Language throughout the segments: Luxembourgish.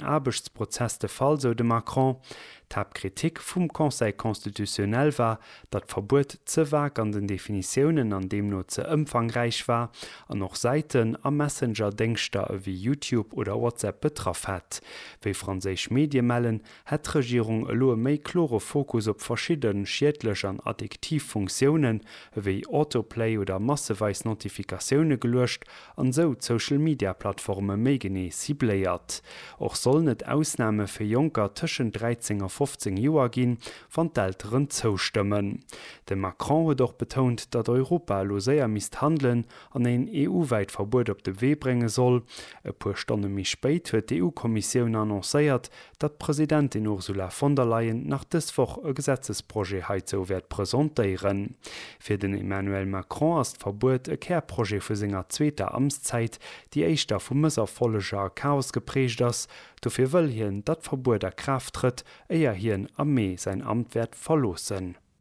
Aarbechtsprozess de Fall, sou de Macron. D'Haaptkritik vum Conseil constitutionnel war, datt d'Verbuet ze vag an den Definitiounen an deemno ze ëmfangräich war an och Säiten a Messenger-Déngschter ewéi Youtube oder WhatsApp betraff hätt. Wéi franséisch Medie mellen, hätt d'Regierung elo e méi klore Fokus op verschidde schiedlech an addiktiv Funktiounen ewéi Autoplay oder masseweis Notifikatioune geluecht an esou d'Social Media Plattforme méi genee cibléiert. Och sollen et Ausname fir Jonker tëschent 13 a 15 Joer ginn, wann d'Elteren zoustëmmen. De Macron huet och betount, datt Europa elo séier misst handelen an een EU-wäit Verbuet op de Wee brénge soll. E puer Stonne méi spéit huet d'EU-Kommissioun annoncéiert, datt d'Presidentin Ursula von der Leyen nach dës Woch e Gesetzesprojet heizou wäert presentéieren. Fir den Emmanuel Macron ass d'Verbuet e Kärprojet vu senger zweeter Amtszäit, déi éischter vu Mësserfolleger a Chaos geprägt ass. Dofir wëll hien, datt d'Verbuet a Kraaft trëtt, éier hien am Mee säin Amt wäert verloossen.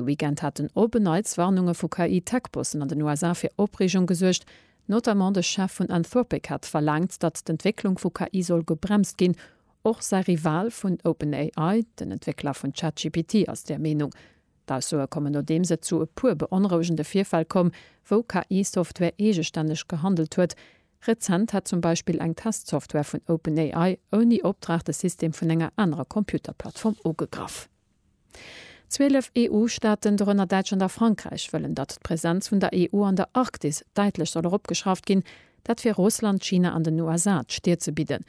De Weekend haten Open-Nights Warnunge vu KI-Tech-Bossen an den USA fir Opreegung gesuergt. Notamment de Chef vun Anthropic hat verlaangt, datt d'Entwécklung vu KI soll gebremst ginn. Och säi Rival vun OpenAI, den Entwéckler vun ChatGPT, ass där Meenung. D'Aussoe kommen nodeems et zu e puer beonrouegende Virfäll koum, wou KI-Software eegestänneg gehandelt huet. Rezent hätt zum Beispill eng Test-Software vun OpenAI ouni Optrag de System vun enger anerer Computer-Plattform ugegraff. Zwielef EU-Staaten, dorënner Däitschland a Frankräich, wëllen, datt d'Presenz vun der EU an der Arktis däitlech soll eropgeschrauft ginn, dat fir Russland, China an den USA d'Stir ze bidden.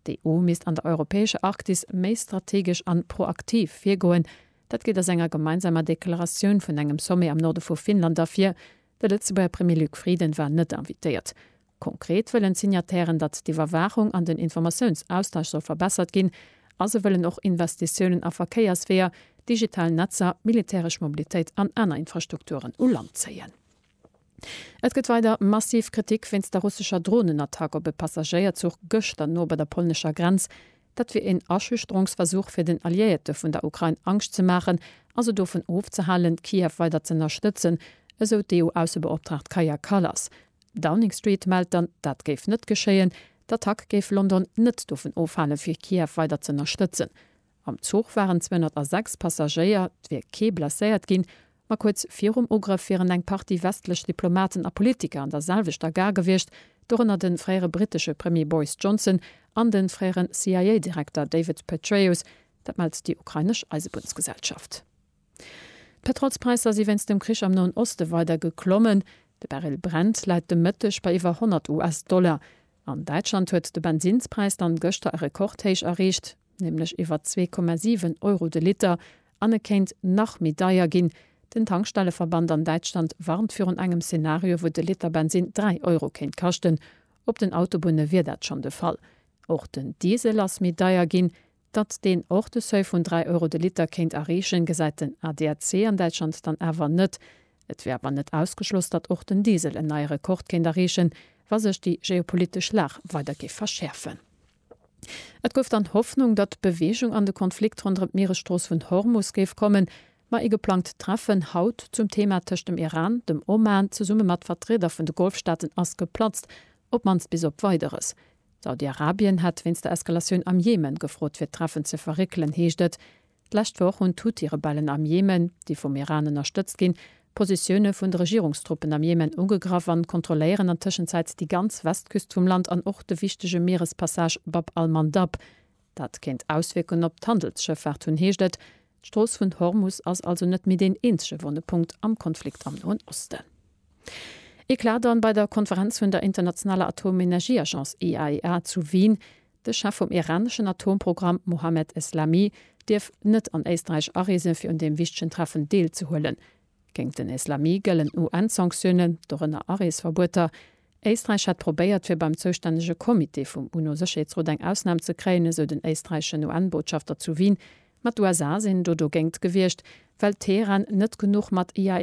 D'EU misst an der europäescher Arktis méi strategesch an proaktiv virgoen, dat geet aus enger gemeinsamer Deklaratioun vun engem Sommet am Norde vu Finnland ervir. De Lëtzebuerger Premier Luc Frieden war net invitéiert. Konkret wëllen d'Signatairen, datt d'Iwwerwaachung an den Informatiounsaustausch soll verbessert ginn a se wëllen och Investitiounen a Verkéiersweeër, digital Netzer, militäresch Mobilitéit an aner Infrastrukturen u Land zéien. Et gëtt weider massiv Kritik wéinst der russescher Dronenattack op e Passagéierzuch gëschter no bei der polnescher Grenz. Dat wier een Aschüchterungsversuch, fir den Alliéierte vun der Ukrain Angscht ze maachen a se dovun ofzehalen, Kiew weider z'ënnerstëtzen, esou d'EU-Aussebeoptraagt Kaja Kallas. Downing Street mellt dann, dat géif net geschéien. D'Attack géif London net dovun ofhalen, fir Kiew weider z'ënnerstëtzen. Am Zuch waren 206 Passagéier, et wier kee blesséiert ginn. Ma kuerz virum Ugrëff wieren eng Partie westlech Diplomaten a Politiker an der selwechter Gare gewiescht, dorënner de fréiere brittesche Premier Boris Johnson an de fréiere CIA-Direkter David Petraeus. Dat mellt déi ukrainesch Eisebunnsgesellschaft. D'Petrolspräisser si wéinst dem Krich am Noen Oste weider geklommen. De Barrel Brent läit de Mëtteg bei iwwer 100 US-Dollar. An Däitschland huet de Bensinnspräis dann gëschter e Rekordhéich erreecht, nämlech iwwer 2,7 Euro de Liter. An e kéint nach méi deier ginn. Den Tankstelleverband an Däitschland warnt virun engem Szenario, wou de Liter Bensinn 3 Euro kéint kaschten. Op den Autobunne wier dat schonn de Fall. Och den Diesel ass méi deier ginn. Datt deen och de Seuil vun 3 Euro de Liter kéint erreechen, gesäit den ADAC an Däitschland dann awer net. Et wier awer net ausgeschloss, datt och den Diesel en neie Rekord kéint erreechen, wa sech déi geopolitesch Lag weider géif verschäerfen. Et gouf dann Hoffnung, datt Beweegung an de Konflikt ronderëm d'Mieresstrooss vun Hormus géif kommen, ma ee geplangt Treffen haut zum Thema tëscht dem Iran, dem Oman zesumme mat Vertrieder vun de Golfstaaten ass geplatzt, op mannst bis op Weideres. Saudi-Arabien hätt wéinst der Eskalatioun am Jemen gefrot fir d'Treffen ze verréckelen, heescht et. D'lescht Woch hunn d'Huthi-Rebellen am Jemen, déi vum Iran ënnerstëtzt ginn, d'Positioune vun de Regierungstruppen am Jemen ugegraff an kontrolléieren an Tëschenzäit déi ganz Westküst vum Land an och de wichtege Mierespassage Bab al-Mandab. Dat kéint Auswierkungen op d'Handelsschëffaart hunn, heescht et. D'Strooss vun Hormus ass also net méi deen eenzege wonne Punkt am Konflikt am Noen Osten. Eclat dann bei der Konferenz vun der internationaler Atomenergieagence IAEA zu Wien. De Chef vum iraneschen Atomprogramm Mohammed Eslami dierf net an Éisträich areese fir un deem wichtegen Treffen deelzehuelen. Géint den Eslami gëllen UN-Sanktiounen, dorënner Areesverbueter. Éisträich hätt probéiert fir beim zoustännege Comité vum UNO-Sécherheetsrot eng Ausnam ze kréien, esou den éisträicheschen UN-Botschafter zu Wien. Ma d'USA sinn do dogéint gewiescht, well Teheran net genuch mat IAEA.